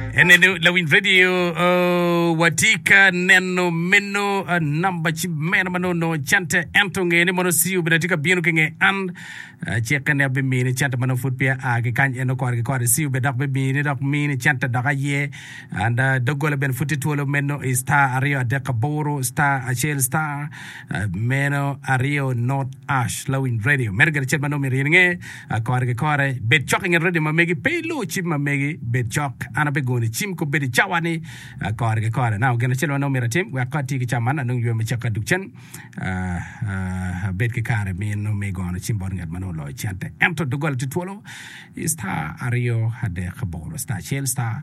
Ene ni lawiny radio oh, watye ka neno meno ah, namba ci meno ma nongo nongo cente ento nge ni mono CU bene tye ka bino ki nge an ah, ci kene abimiyo ni cente ma nongo pud peya a ki kany eno kore ki kore CU bene dok bimiyo ni dok miyo ni cente dok aye and ah, doggola bene pud tye twolo meno i star aryo adek aboro star acel star ah, meno aryo not ash lawiny radio meno gire cel ma nongo myero in inge Akore ki kore, bed cok i nget rwoddi ma megi, pe ilu cim ma megi, bed cok, an abigono i cim kobeddi i cawa ni, Akore ki kore. Nano gin acel ma nongo myero atim wek kong ati ki cawa man, anong ywe me cakke duk cen, abed ki kare meno me gono cim bot ngat ma nongo oloyo cente. Ento doggola tye twolo i star aryo adek aboro, star acel, star.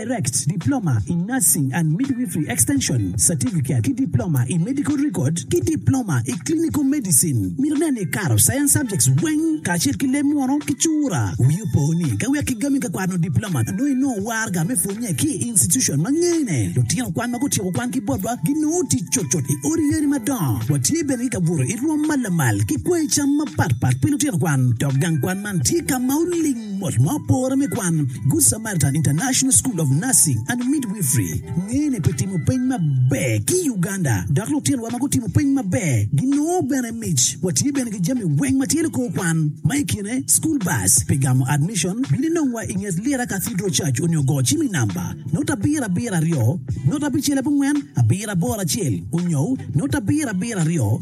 Direct Diploma in Nursing and Midwifery Extension Certificate ki Diploma i Medical Record ki Diploma i Clinical Medicine. Mito nen ni ikato Science subjects weng kacel ki leb munu ki cura. Wii opo ni ka wek igami ka kwano Diploma nongo inongo warga me pwonye ki i institution ma ngene. Lutino kwan ma gutyeko kwan ki botwa ginongo tic cutcut i odi yeni madongo. Watye bene ki kabuto i rwom ma lamal ki kwai cam mapatpat pi lutino kwan. Dok gang kwan man tye ka ma oling mot ma opore me kwan. Guca. Carleton International School of Nursing and Midwifery ngene pi timo peny maber ki i Uganda, dok lutinwa ma gutimo peny maber ginongo bene mic. Watye bene ki jami weng ma tye likor kwan, ma i kine school bus pi gamo admission, bino inongwa i nget Lira Cathedral Church onyo go cim i namba note abiro abiro aryo note abicel abongwen abiro aboro acel onyo note abiro abiro aryo.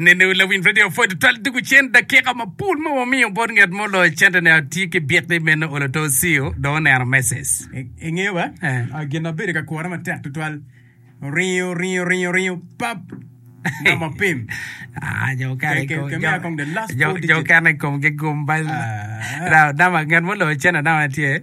Nenu lawiny redio pwod twal tugo cen dakika mapol ma wamiyo bot ngat mo loyo cente ni atye ki byek ni meno olo to Cio dong oneno message. Ingeyo ba gin ma bedo ka kura matek tutwal? Ringo, ringo, ringo, ringo, pap! Namba opim. Ah, jo okene Ke- ke- ke- miya kong the last four digit. okene i komgi gum bal. Ah. Dok namba ngat muloyo cente namba tye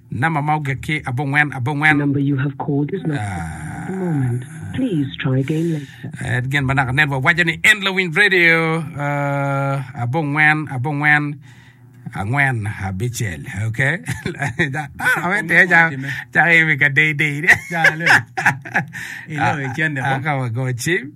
Namba ma ogikki abongwen abongwen. Gin ma naka network waco ni en lawiny radio abongwen abongwen angwen abicel ok dano me tye cako imi ka deyi deyi ka wago cim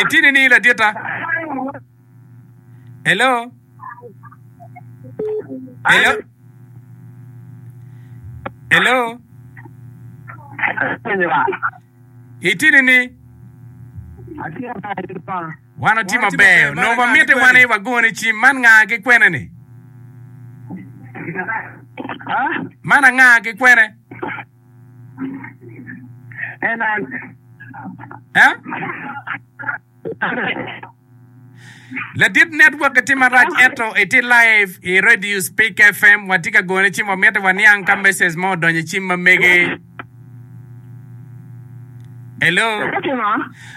Itye nining laditta? Hello? Hello? Hello? Itye nining? Wan watye maber. Onongo wamitti wan aye wagone cim. Man nga ki kwene-ni? Man anga ki kwene? Ladit network tye marac ento itye live i radio speak fm watye ka gone ci wamito waniang ka message mo odonyo i cim ma mege. Hello.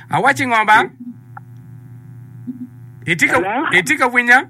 Awaci ngo ba? Itye ka winya?